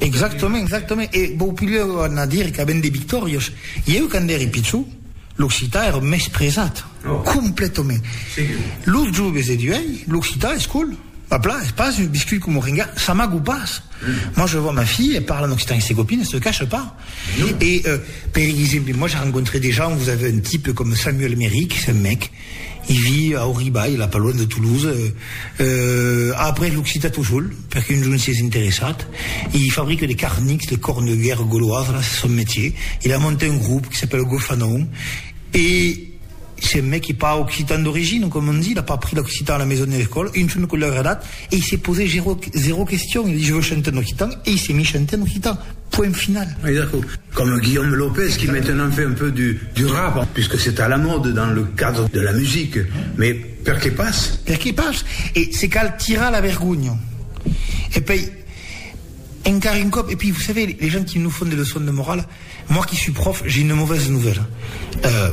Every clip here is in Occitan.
Exactament, exactament. E vau pudèr anar dire qu'avèn de victòrias. Ieu quand ère pichon, l'occitan ère mespresat. Completament. Los joves de d'uèi, l'occitan es cool. A plan, es pas un biscut coma renga, ça m'agou pas. Moi je vois ma fille, elle parle en occitan avec ses copines, elle se cache pas. Et per exemple, moi j'ai rencontré des gens, vous avez un type comme Samuel Méry, qui c'est un mec, I vi a Auribai, la paluan de Toulouse, a après l'occitan tot sol, perque un jorn sies interessat, e i fabrique de carnics, de corn de guèrra goloasa, la c'est son metier, il a monté un groupe qui s'appelle Gofanon, e c'est un mec qui est pas occitan d'origine, comme on dit, il a pas appris l'occitan à la maison ni à l'école, un jorn que l'ai agradat, e i s'est posé zero question, il a dit je veux chanter en occitan, e i s'est mis chanter en occitan. Point final. Mai d'aquò. Comme Guillaume Lopez qui maintenant fait un peu du rap, puisque c'est à la mode dans le cadre de la musique, mais per que pas? Per que pas? E se cal tirar la vergonha. E pei, encara un còp, e pui vous savez, les gens qui nous font des leçons de morale, moi qui suis prof, j'ai une mauvaise nouvelle. Euh.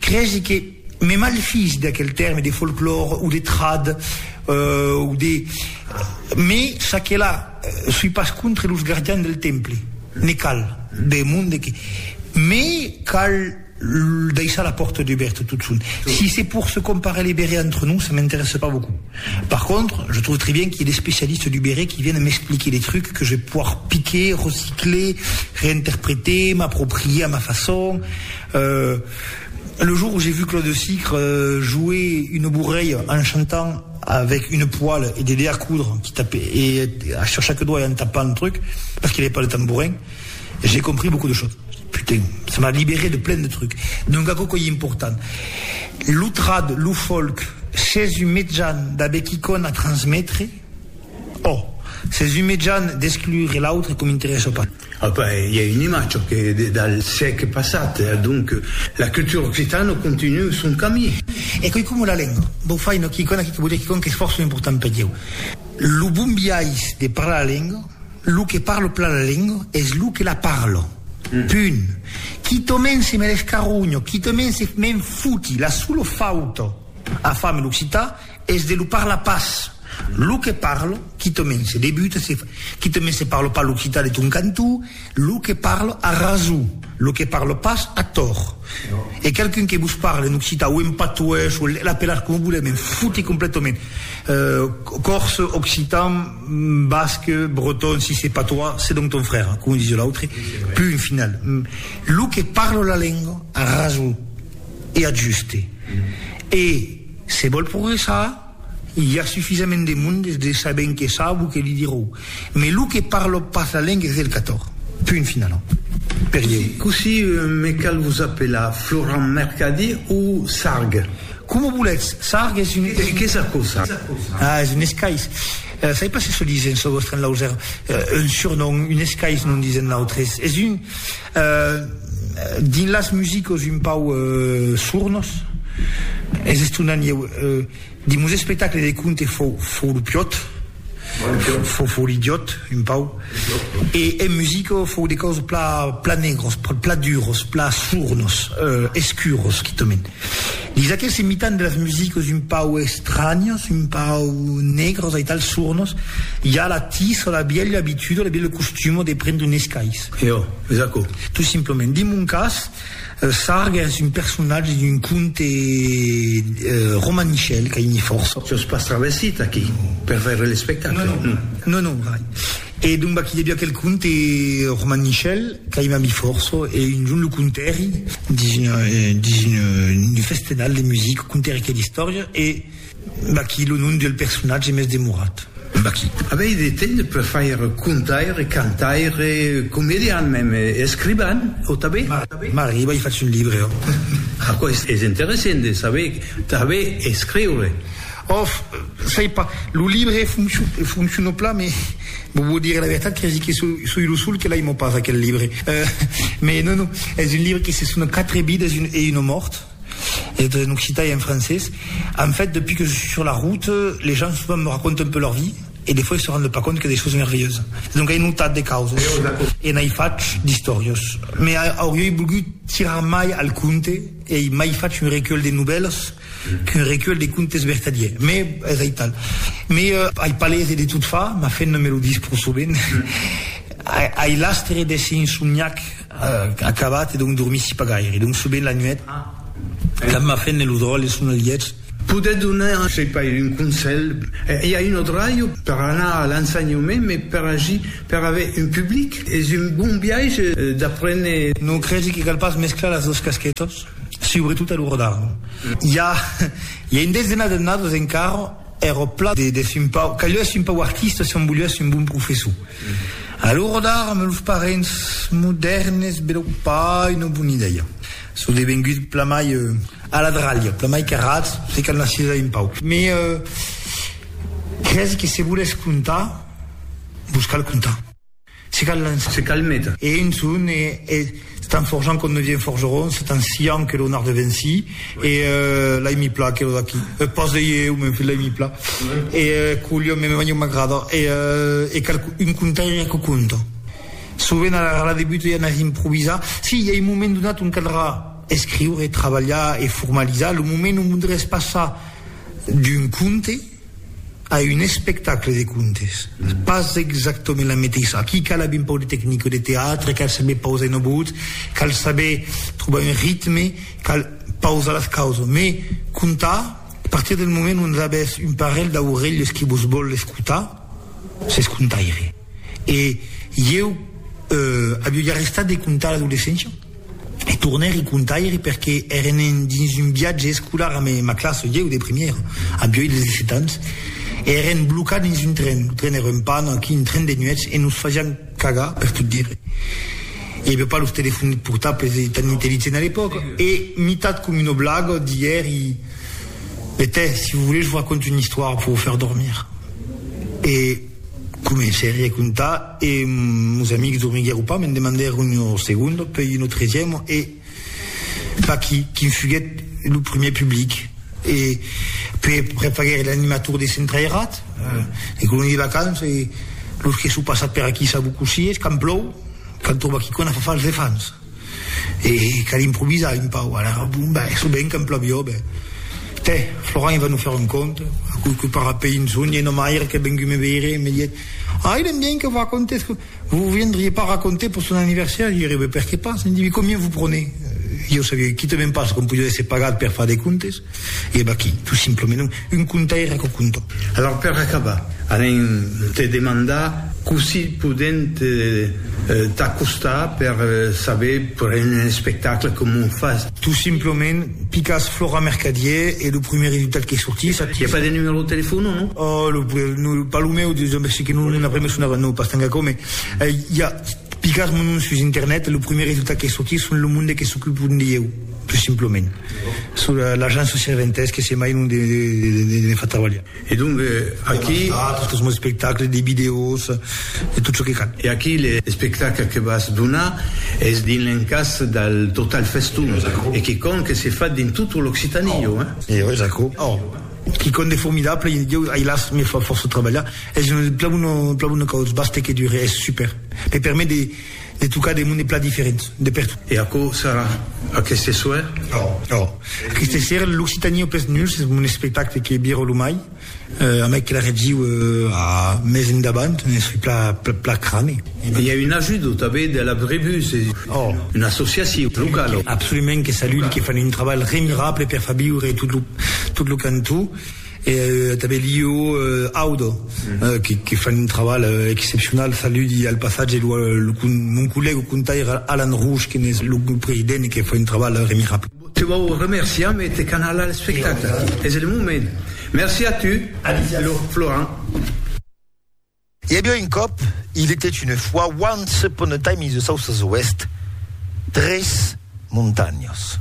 Cresi que me malfís d'aquel tèrme de folclòre o de trad o de me ça que là soi pas contre los gardians del temple, ne cal de monde que me cal daissar la pòrta dubèrta totson. Si c'est pour se comparer les bérets entre nous ça m'intéresse pas beaucoup. Par contre je trouve très bien qu'il y ait des spécialistes du béret qui viennent m'expliquer des trucs que je vais pouvoir piquer, recycler, réinterpréter, m'approprier à ma façon. Euh, le jour où j'ai vu Claude Sicre jouer une bourreille en chantant avec une poêle et des dés à coudre qui tapaient et sur chaque doigt et en tapant le truc parce qu'il avait pas le tambourin, j'ai compris beaucoup de choses. Putain, ça m'a libéré de plein de trucs. Donc aquò qu'ei important, lo trad, lo folk, s'es un mejan d'aver quicòm a transmetre, ò, s'es un mejan d'exclure l'autre que m'interessa pas. Apa, i a un imatge que dal siecle passat, donc la cultura occitana continua son camí. E coi coma la lenga, vau far una quicòna aquí que vau dire quicòna qu'es fòrça important per ieu. Lo bon biais de parlar la lenga, lo que parla plan la lenga es lo que la parla. Punt. Quitament se me l'escarronha, quitament se me'n foti, la sola fauta a far amb l'occitan Es de lo parla pas. Lo que parlo, quitament se debuta, se fa, quitament se parlo pas l'occitan de ton cantó, lo que parlo a raso, lo que parlo pas a tòr. E qualqu'un que vos parle en occitan o en patois o l'apelatz coma volètz, me'n fote completament. Còrse, occitan, basc, breton, si se patois, se donc ton frère, coma disiá l'autre, punt final. Lo que parlo la lenga a raso e a juste. E. Se vòl progressar, i a sufisament de monde de sabent que sap o que li dirou. Mes lo que parlop pas la lenga es del cator. Punt final. Per ieu. Cossí me cal vos apelar? Florent Mercadier o Sarg? Coma voletz. Sarg es un. Qu'es aquò, Sarg? Ah, es un escais. Sai pas se çò disen çò vòstre en Lauser. Un surnom, un escais, non disen nautres. Es un. Dins las musicos un pauc sornos, es estonant ieu. Dins mos espectacle de conte fou lo piòt, fou l'idiòt un pauc, e en musico fou de còs plan negros, plan duros, plan sornos, escuros quitament. Dins aqueste mitan de las musicos un pauc estranyos, un pauc negros aital, sornos, i a la tisa la bièlha abituda, lo bièlh costumo de prendre un escais. Io, es aquò. Tot simplement. Dins mon cas, Sarg es un personatge d'un conte romanichel qu'a ini fòrça. Tu as pas travessit aquí per veire l'espectacle? Non, non. Non, non, mai. E doncbà qu'i deviá quel conte romanichel qu'a ima mi fòrça e un jorn lo contèri dins un festenal de musica, contèri quel istòria e. Vaquí lo nom del personatge mès demorat. Vaquí. Avei de temps per faire contaire, cantaire, comedian mem, escrivan, o tabé? M'arriba i fach un libre, oh. Aquò es interessent de saber, tabé escriure. Of, sai pas. Lo libre fonciona plan, mès vos vau dire la vertat, cresi que soi lo sol que l'aimo pas, aquel libre. Mès non, non, es un libre que se sona Quatre vidas e una mòrt. C'est en occitan et en français. En fait, depuis que je suis sur la route, les gens souvent me racontent un peu leur vie et des fois ils se rendent pas compte qu'il y a des choses merveilleuses. Donc ai notat de causas e n'ai fach d'istòrias. Me auriei volgut tirar mai al conte e ai mai fach un recuelh de novèlas qu'un recuelh de contes vertadiers. Me es aital. Me ai pas lese de tot fa, ma fen no me lo dis pro sovent. Ai l'astre d'èsser insomniac. Acabat e donc dormissi pas gaire. Donc sovent la nuèt, quand ma feina lo dròlle son al lièch. Podètz donar, sei pas, un conselh? I a un autre raio per anar a l'ensenhament, mai per agir, per aver un public, es un bon biaige d'aprene. Non crèsi que cal pas mesclar las dos casquetas, subretot a lo rodar. I a un desdenat d'annadas encara. Ère eth plan de Simpau, qu'alheu eth Simpau artista se'n voliá es un bon professor. A l'ora d'ara, me los parents modèrnes, be lo pa una bona idèia. Sò devengut plamai a la dralha, plamai qu'arrat, se cal anar sis a Impau. Me cresi que se volètz contar, vos cal contar. Se cal lançar. Se cal metre. E un son e estan forjant com devien forgerons, estan siant que lo narde venci e l'ai mi pla que lo d'aqui. Pas ei eu, m'en fut l'ai mi pla. E culhon, me manha uma grada e e cal un contaire que conta. Sovent a la debut i a na improvisar. Si, i a un moment donat ont caldrà escriure, trabalhar e formalizar lo moment ont voldràs passar d'un conte, A un espectacle de contes. Pas exactament la meteissa. Aquí cal aver un pauc de tecnica de teatre, cal saber pausar una votz, cal saber trobar un ritme, cal pausar las causas. Me contar, a partir del moment ont avètz un parelh d'aurelhas que vos vòl escotar, s'es contaire. E ieu aviu arrestat de contar l'adolescéncia e tornèr i contaire perque èrem dins un viatge escolar amb ma classa, ieu de primièra, avioi 17 ans, e èrem blocats dins un tren, lo tren èra en pana, aquí un tren de nuèch e nos fasián cagar per tot dire. I aviá pas los telefòns portables e tan intelligents a l'epòca. E mitat com una blaga d'ièr i betè, si vos volètz vos raconte una istòria per vos fèr dormir. E. Comencèri a contar e meus amics dormiguèron pas, me'n demandèron un segundo, pei un autresièm e vaquí quin fuguèt lo primièr public e pei aprèp faguèri l'animator de Centrairat, de Coloni de Vacances e los que son passats per aquí s'abocossies, quand plòu, quand tròba quicòna fa fals de fans. e cal improvisar un pauc, alara, bon, ben, çò ben qu'en plavió, ben, tè, Florent, va nos faire un conte, aquoi que para pei un sonh, e nomaire qu'es vengut me veire, me diet, ai, ben bien que vos racontes, que vos viendriez pas raconter pour son anniversaire, jo ère, ben, perqué pas, e me dit, mais combien vous prenez? Jo savioi quitament pas com podia èsser pagat per far de contes. E eb aquí, tot simplement, un contaire aquò conto. Alòr per acabar, alen te demandar cossí podent t'acostar per saber per un espectacle comment fas. Tot simplement, picas Flora Mercadier e lo prumèr resultat que sortís. I a pas de numèro de telefòn o non? Oh, lo pas lo meu, de ben segur que non, non après me sonava, non, pas tanga aquò, mais i a, picas mon nom sus internet e lo prumèr resultat que sortís son lo monde que s'ocupe de ieu. Pus simplament, sur l'agent socialventès que se mai non ne fa trabalhar. E donc aquí. Tot çò que son d'espectacles, de vidèos, de tot çò que cal. E aquí l'espectacle que vas donar es dins l'encàs del Total Festum e quicòm que se fa dins tota l'Occitània, jo, hein? E jo, es aquò. Or, quicòm de formidable, jo, ai las, me fa fòrça trabalhar, es un plabun, un plabun de còrds, basta que dure, es super. Me permet de. De tocar de monde plan diferent, de pertot. E aquò serà aqueste soir? Òòh! Òòh! Aqueste soir, l'Occitanie au pes nuls es mon espectacle que viro lo mai, a mai que la reviu a mes endavant, ne soi pla, pla crane. I a un ajudo tanben de la Brebus, una associacion locala. Absolument, que salude, que fan un trabalh remirable per fa viure tot lo, tot lo cantó. E tanben Lio Audo que fan un trabalh excepcional. Saludi al passatge mon collègue contaire Alan Rouge que n'es lo president que fa un trabalh remirable. Te vau remerciar me te canala l'espectacle. Es el moment. Merci a tu Florent. I aviá un còp, il était une fois, once upon a time in the south of the west, tres montanhas.